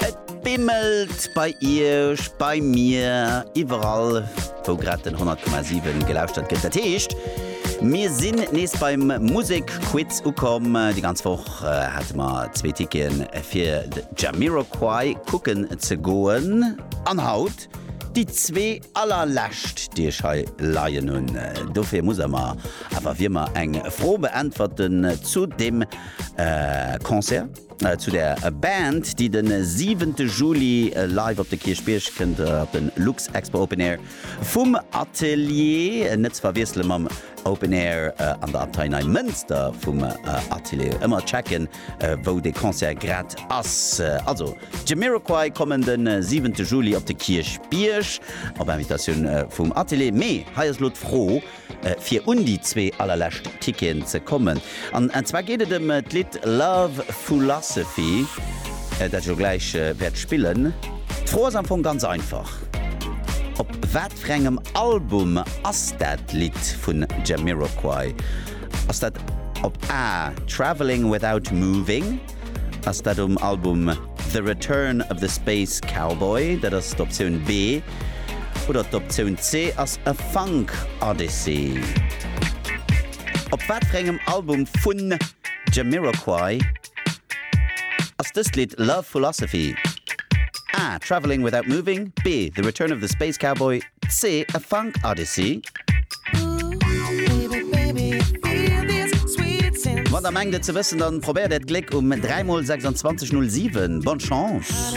Et bimmelt bei iech, bei mir, iwwerall wou grad den 100,7 gelauschtert gëtt. Dat heescht, mir sinn nees beim Musekquiz ukomm. Déi ganz Woch hate mer zwee Ticketen fir de Jamiroquai kucken ze goen. An haut déi zwee allerlescht, déi ech hei leien hunn. Dofir muss a mer awer wéi ëmmer eng Fro beäntwerten zu deem Concert. Zu der Band, déi de siwente Juli live op de Kierchbierg kënnt, op de Luxexpo Open Air vum Atelier, net ze verwiessele mam Open Air an der Abtei Neimënster vum Atelier. Ëmmer checken, wou de Concert grad ass. Also, d'Jamiroquai kommen de siwente Juli op de Kierchbierg, op Invitatioun vum Atelier. Mee hei ass elo d'Fro, fir un déi zwee allerlescht Ticketen ze kommen. An zwar geet et ëm d'Lidd Love Foolosophy, dat ech elo gläich wäert spillen. D'Fro ass am Fong ganz einfach, Op wat fir engem Album ass dat Lidd vun Jamiroquai? Ass dat op A Travelling Without Moving? Ass dat um Album The Return of the Space Cowboy, dat ass d'Optioun B, oder d'Optioun C ass A Funk Odyssey? Op wat fir engem Album vun Jamiroquai ass dëst Lidd Love Philosophy? A Travelling Without Moving, B The Return of the Space Cowboy, See a funk odyssey. Wann der mengt et ze wëssen, dann probéiert äert Gléck um 3 mol 26 07. Bonne chance!